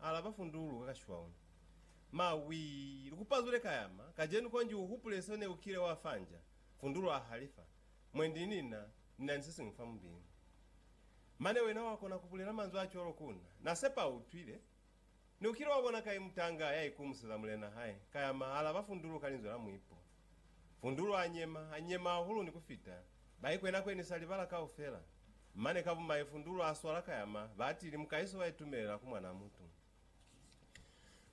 alaba fundulu ka kashwau. Ma, wii, likupazule kayama, kajenu konji uhupule seo neukile wa fa nja, fundulu ahalifa, Mwendi nina, nina ni sesiñwi fa mubili. Mane wena wakona kubulela manzwi acwalo ku na. Nasepa uutwile. Neukile wabona kai mutanga yaikumuseza mulena hae, kayama, alaba fundulu ka linzwi la muipo. Fundulo a nyema, a nyema hahulu ni kufita, ba ikwenakwenisa libala kaufela. Mane ka bumai Fundulo a swala ka yama, batili mukaiso ba itumelela ku Mwan'a mutu.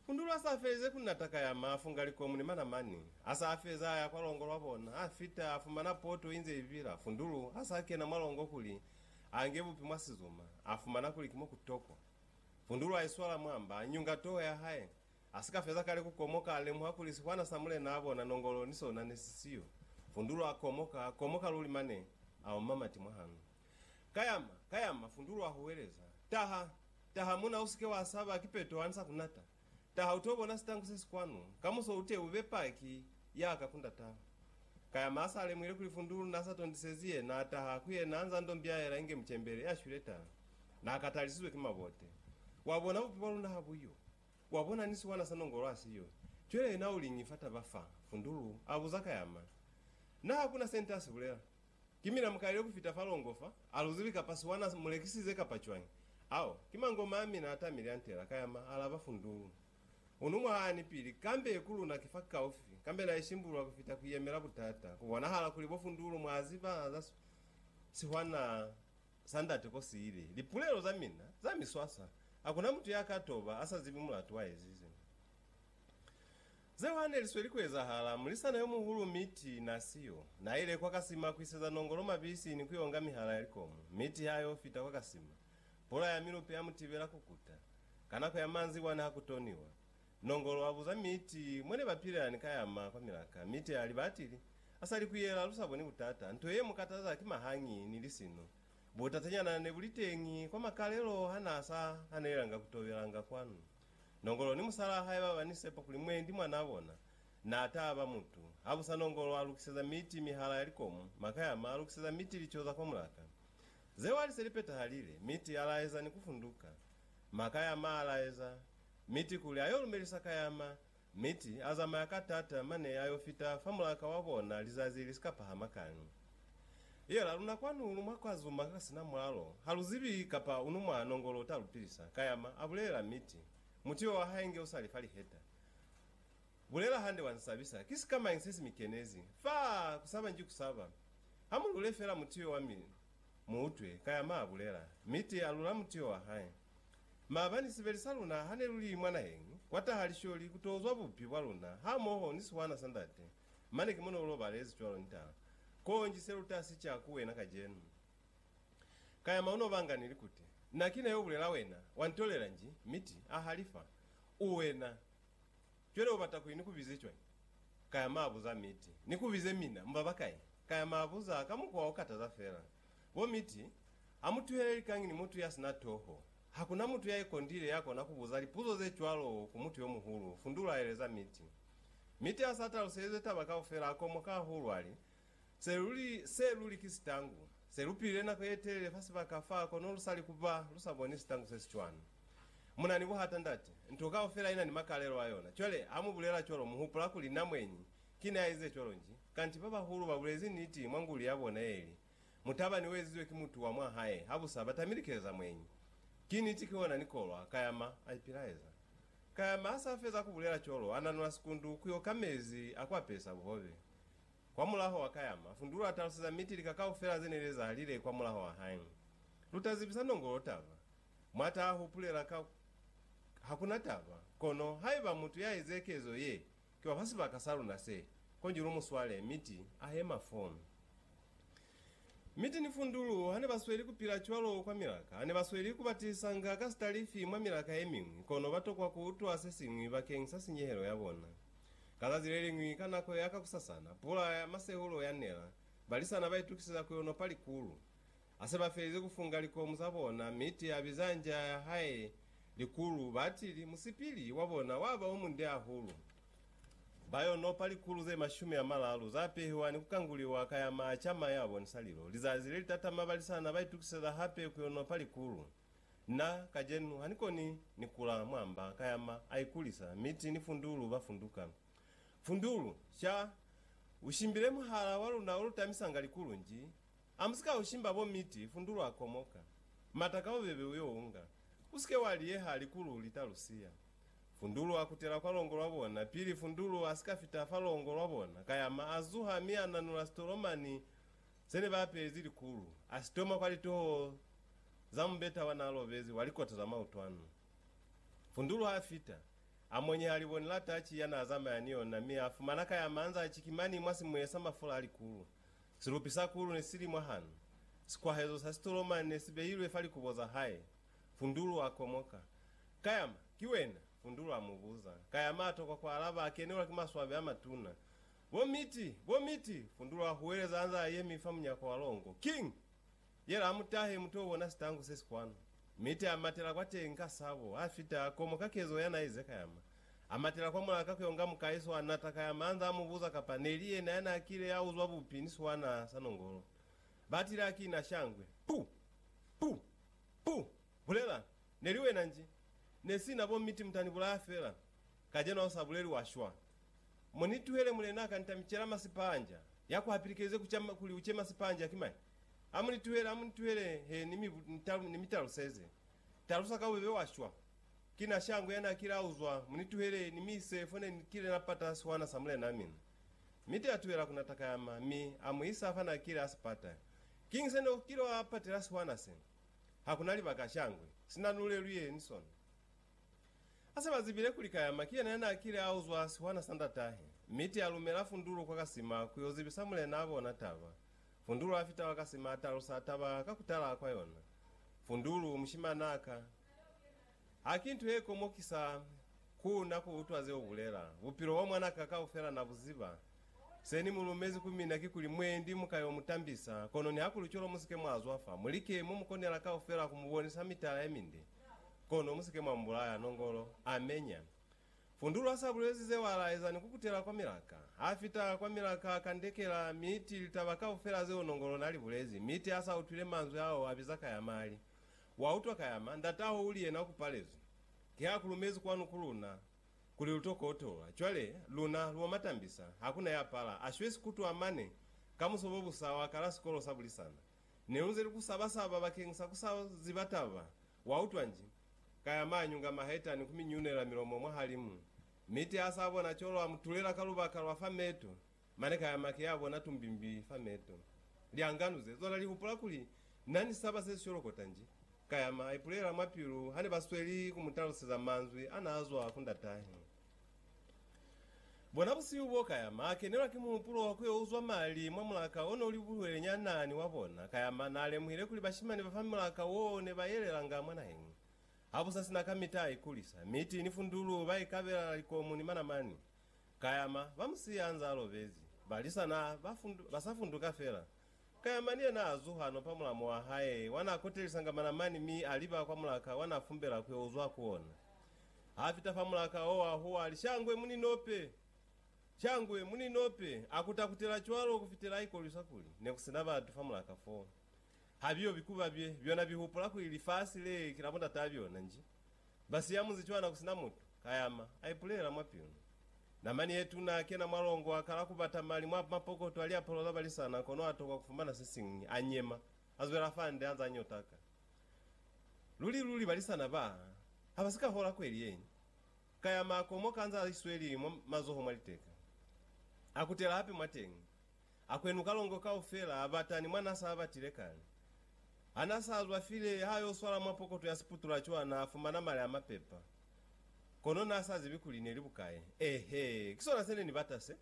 Fundulo a sa felize ku nata ka yama, a funga likomu ni manamani. A sa feza, a ya kwa longo lwa bona, a fita, a fumana poto inze ibila. Fundulo a sa kena mwa longo kuli a nge bupi mwa sizuma, a fumana kuli ki mo ku tokwa. Fundulo a iswala mwamba, a nyunga toho ya hae. A si ka feza kale ku komoka, a lemuha kuli sihwana sa mulenaa bona Nongolo ni sona ne si siyo. Fundulo a komoka, a komoka luli mane a oma mati mwa hanga. Kayama! Kayama! Fundulo a huweleza. Taha! Taha muna, u si ke wa saba, ki Peto a ni sa ku nata. Taha, u t'o bona sitangu se si kwanu. Kamuso u te u be paki ya ka ku ndata. Kayama a sa lemuhile kuli Fundulo n'a sa tondisezi yena, a taha ku yena a nz'a n'to mbiaela inge mucembele ya shwile taha. N'a katalisizwe ki mabote. Wa bona bupi bwa luna ha bu yo. Wa bona ni siwana sa nongolo ha siyo. Cwale yena u liñi fa taba fa? Fundulu a buza ka yama. Na ha ku na se nte a si bulela. Ki mina mukalile ku fita fa longo fa, a lu zibi kapa siwana mu lekisize kapa cwañi. Ao, ki mangoma a mina a tamile a ntela, ka yama, alaba Fundulu. U nu mwa haani pili, kambe ku luna ki fa kaufi, kambe na ishimbulula ku fita ku yemela butata. Ku bonahala kuli bo Fundulu mwa ziba za siwana. Sa Ndate Kosi ili, Lipulelo za mina za miswaswa. Hakuna mutu ya ka toba a sa zibi mulatu wa ezize zeo ha ne li sweli ku ezahala. Mulisana yo muhulu Mitty na siyo. Na ile kwa kasima ku iseza nongolo mabisi ni ku yo nga mihala ya likomu. Mitty ha yo fita kwa kasima, pula ya milupe ya mu tibela ku kuta. Ka nako ya manzibwa ne ha ku toniwa, Nongolo abuza Miti mwene bapilelani ka yama kwa milaka. Miti aliba atili, Asali kuyela lusaboni butata. Nto yemukataza ki mahangi ni lisino. Butatanyana nebuliteñi kwa makalelo hanaasa hanelelanga kutobelanga kwanu. Nongolo ni musalaa hae baba ni sepa kuli mwendi mwanaa bona naataba mutu. Habusa Nongolo alukiseza Miti mihala ya likomu, maka yama alukiseza Miti lico za kwa mulaka. Zeo aliseli petahalile, Miti alaeza ni kufunduka. Maka yama alaeza, Miti kuli ayo lumelisa kayama, miti azamaya ka tata mane ayo fita fa mulaka wa bona lizazi lisika pahama kani. Iyo la luna kwanu lu mwa kwa zuma ka sina mwalo, ha lu zibi kapa unu mwa nongolo uta lu pilisa, kayama abulelela miti, muti wo wahae nge usali fa liheta. Bulela hande wa nsabisa, ki sikamañi sesi mikenezi? Faa! Kusaba nji kusaba. Ha mu lule fela muti yo wa mi, Mu utwi, ka ya maa bulela, mi ti alula mutio wa hae. Maabani sibeli sa luna ha ne luli mwa naheng, kwa taha lisholi ku to uzwa bubi bwa luna hamoho ni sihwana sa ndate. Mane ki mo ne u lobalezi cwalo ni tala. Konji se lu ta si ca ku wena kacenu. Ka ya maa u no banga ni likuti. Na ki na yo bulela wena, wa ntolela nji, mi ti, A halifa. U wena. Cwale ubata kuli nikubize cwañi? Kaya maabuza Mitty. Nikubize mina? Mubaba kai? Kaya maabuza ka mukwa okataza fela. Bo Mitty, amutuhele likañi ni mutu yasina toho. Hakuna mutu yaikondile yakona kubuza lipuzo zecwalo ku mutu yomuhulu, Fundula aeleza Mitty. Mitty asa taluselize taba kaufela, akomoka hahulu ali, Se luli, se luli ki sitangu. Se lu pilile nako ye telele fa sibaka fa kono lu sali kuba lu sa boni sitangu se si cwani. Mu na ni buhata, ndate. Nto kaufela ina ni makalelo a yona. Cwale, ha mu bulela cwalo, mu hupula kuli na mweñi ki ne a ize cwalo nji. Kanti babahulu ba bulezi niti mwa nguli ya bona ye li, Mutabani u ezizwe ki mutu wa mwa hae, ha busa ba tamile ki eza mweñi. Ki niti, ki ona ni kolwa. Kayama a ipilaeza. Kayama ha sa feza ku bulela cwalo, a nanula sikundu ku yo ka mezi a ku apesa buhobe. Kwamulaho wa kayama, Fundulu a taluseza Miti lika kaufela ze ne li ezahalile kwamulaho wa hae. Lu ta zibisa Nongolo taba. Mwa ta hupulela ka ku, Hakuna taba, kono haiba mutu ya eze kezo ye, ki wa fa sibaka sa luna se, konji lu mu swale, Miti a hema foo. Mi teni fundulu hane ba sweli ku pila cwalo kwa milaka, hane ba sweli ku batisanga ka sitalifi mwa milaka ye miñwi, kono ba tokwa ku utwa se siñwi bakeng sa sinyehelo ya bona. Ka zazi le liñwi ka nako ya kakusasana, pula ya masehulo ya nela, balisana ba itukiseza ku yo nopa likulu. Ha se ba felize ku funga likomu za bona, Mitty a biza nja ya hae likulu, batili, musipili wa bona wa ba o munde hahulu. Ba yo nopa likulu ze mashumi a malalu za pehiwa ni ku kanguliwa ka ya maaca ma ya bonisa lilo. Lizazi le li tatama balisana ba itukiseza hape ku yo nopa likulu. Na, kacenu, ha ni koni ni kula mwa mba ka ya ma a ikulisa, miti ni fundulu ba funduka. Fundulu, sha, u shimbile muhala wa luna o lu tamisanga likulu nji. A mu si ka u shimba bo miti, fundulu a komoka. Mata ka bubebe u yo unga. U si ke wa liyeha likulu li ta lu siya. Fundulu a kutela kwa longo lwa bona. Pili Fundulu a si ka fita fa longo lwa bona, Kayama a zuha mi a nanula sitolomani se ne ba apezi likulu, a si toma kwa litoho za mubeta wa n'a lobezi wa likota za mautwano. Fundulu ha fita, a monyeha liboni la tachi ya n'a zamaya ni yona mi a fumana Kayama anz'a chikimani mwa simuye sa mafula a likulu. Silupi sa kulu ne si li mwahanu. Sikwahezo sa sitolomani ne si beilwe fa likubo za hae. Fundulu a komoka. Kayama, ki wena? Fundulu a mu buza. Kayama a tokwa ku alaba, a kenelwa ki maswabi a matuna. Bo Miti! Bo Miti! Fundulu a huweleza a nze a yemi fa munyako wa longo. King! Yela a mu tahe mu to bona sitangu se si kwanu. Miti a matela kwa teñi ka sabo, a fita, a komoka kezo ya n'a ize Kayama. A matela kwa mulaka ku yo nga mukaiso, a nata Kayama a nze a mu buza kapa ne li yena ya n'a kile a uzwa bupi ni siwana sa nongolo. Ba tile a kina shangwe. Puu! Puu! Ku bulela, Neli wena nji. Ne sina bo miti muta ni bulaya fela. Kajeno ha u sa buleli wa shwa. Mo ni tuhele Mulena ka nita mi cela masi panja. Ya ku hapilikeze ku ca kuli u ce masi panja ki mañi? Ha mu ni tuhele, ha mu ni tuhele he ni mi, ni mi taluseze. Talusa ka bubebe wa shwa. Ki na shango ya na kile a uzwa, mu ni tuhele ni mi ise fo ne ni kile na pata sihwana sa Mulena mina. Miti a tuhela ku na takayama, mi a mu isa fa na kile a si pata. Kiñi se no kile wa patela sihwana sena? Ha ku na libaka cangwe sina nu lelwile ni sona. A se ba zibile kuli Kayama ki yena ya n'a kile a uzwa sihwana sa ndatahe, mi ti a lumela Fundulo kwa kasima ku y'o zibisa mulen'a bona taba. Fundulo a fita kwa kasima a talusa taba ka ku tala kwa yona. Fundulu, mushiman'a ka. Haki nto ye komokisa ku na ku utwa ze ubulela. Bupilo bwa mwan'a ka kaufela na bu ziba. Se ni mu lumezi ku mina kikuli, Mwendi, mu ka yo mu tambisa, kono nihakuli cwalo mu si ke mwa zwa fa. Mu like mo mu konela kaufela ku mu bonisa mitala ye minde, kono mu si ke mwa mu bulaya. Nongolo. Amenya. Fundulu ha s'a bulezi zeo a laeza ni ku kutela kwa milaka. Ha fita kwa milaka a kandekela Miti litaba kaufela zeo Nongolo na li bulezi. Miti ha s'a utwile manzwi ao a biza ka ya mali. Wa utwa kayama, ndat'aho uli yena kupalezwi. Ki ha kulumezi kwanu ku luna, kuli lu to kotola. Cwale, luna, lu matambisa, hakuna ya pala. A shwezi kutwa mane, ka muso bo busa, wa kala sikolo sa bulisana. Ne lu nze li ku saba-saba bakeng sa ku sa ziba taba. Wa utwa nji? Kayama a nyunga maheta ni ku mi nyunela milomo mwahalimu. Miti ha sa bona cwalo, a mu tulela ka lubaka lwa fa meto. Mane kaya make ya bona tumbimbi fa meto. Lya nganuze. Zona li hupula kuli, Na ni saba se si sholokota nji. Kaya ma ipulela mwa pilu hane ba sweli ku mu taluseza manzwi a na zwa ku ndatahe. Bona busihu bo, kaya ma kenelwa ki muhupulo wa ku yo uzwa mali mwa mulaka o no li buhwele nyana ni wa bona. Kaya ma na lemuhile kuli bashimani ba fa mulaka wo ne ba yelelanga mwa naheng. Ha bu sa sina kamita a ikulisa. Miti ni fundulu ba ikabela likomu ni manamani. Kayama, ba mu siya anze a lobezi. Balisa na ba sa funduka fela. Kayama ni yena a zuha no pa mulamu wa hae, wa na kotelisanga manamani mi a liba kwa mulaka wa na fumbela ku yo uzwa ku ona. Ha fita fa mulaka o, a huwa, a li, Shangwe, mu ni nope! Shangwe, mu ni nope! A kuta-kutela cwalo ku fitela a ikolwisa kuli ne ku si na batu fa mulaka foo. Ha biyo bikuba bye, byona bi hupula kuli lifasi le ki la bo ndataa byona, nji? Ba siya munzi cwana ku sina mutu, kayama, a ipulela mwa pilu. Namani ye tuna, a kena mwa longo, a kala ku bata mali mwa mapokoto a liapalo za balisana, kono a tokwa ku fumana se siñwi. A nyema, a zwela fande, a nza a ñotaka. Luli luli balisana ba ha ba si ka hola kweli yeñi. Kayama, a komoka a nza a isweli mwa mazoho mwa liteka. A kutela hape mwateñi. Akwenu kalongo kaufela abatani mwa nasa abatile kale. Ha nasa azwa file ha yo swala mwa pokoto ya siputula cwa na fumana mali amapepa. Kono nasa zibi kuli neli bukae. Ehe, kisona sene ni bata se.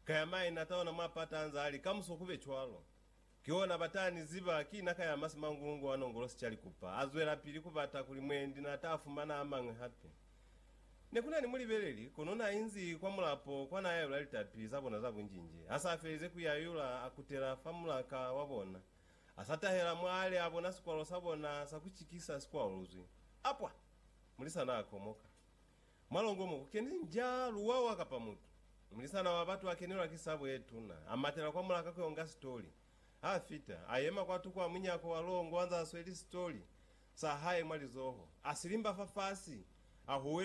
Kaya mai na taona mwa pata anza ali kamuso kube cwalo. Kiona batani ziba ki naka ya masi mangulungu wa nongolosi cali kupa. Azwela pili kubata kuli mwendi na ta fumana amañwi hape. Ne ku na ni mulibeleli, kono n'a inzi kwa mulapo kwa n'a yayula litapi za bona za bunjinji. Ha s'a felize ku yayula, a kutela fa mulaka wa bona. A sa tahela mwa a li a bona sikwalo sa bona sa ku cikisa si kwaluluzwi. Apwa! Mulisa n'a komoka. Mwa longo mo, ku keni nja, luwawa kapa mutu. Mulisana wa batu a kenelwa ki sabo ye tuna. A matela kwa mulaka ku yo nga sitoli. Ha fita, a yema kwa tuku a munyako wa longo anze a sweli sitoli sa hae mwa lizoho, a silimba fafasi, a huwelela.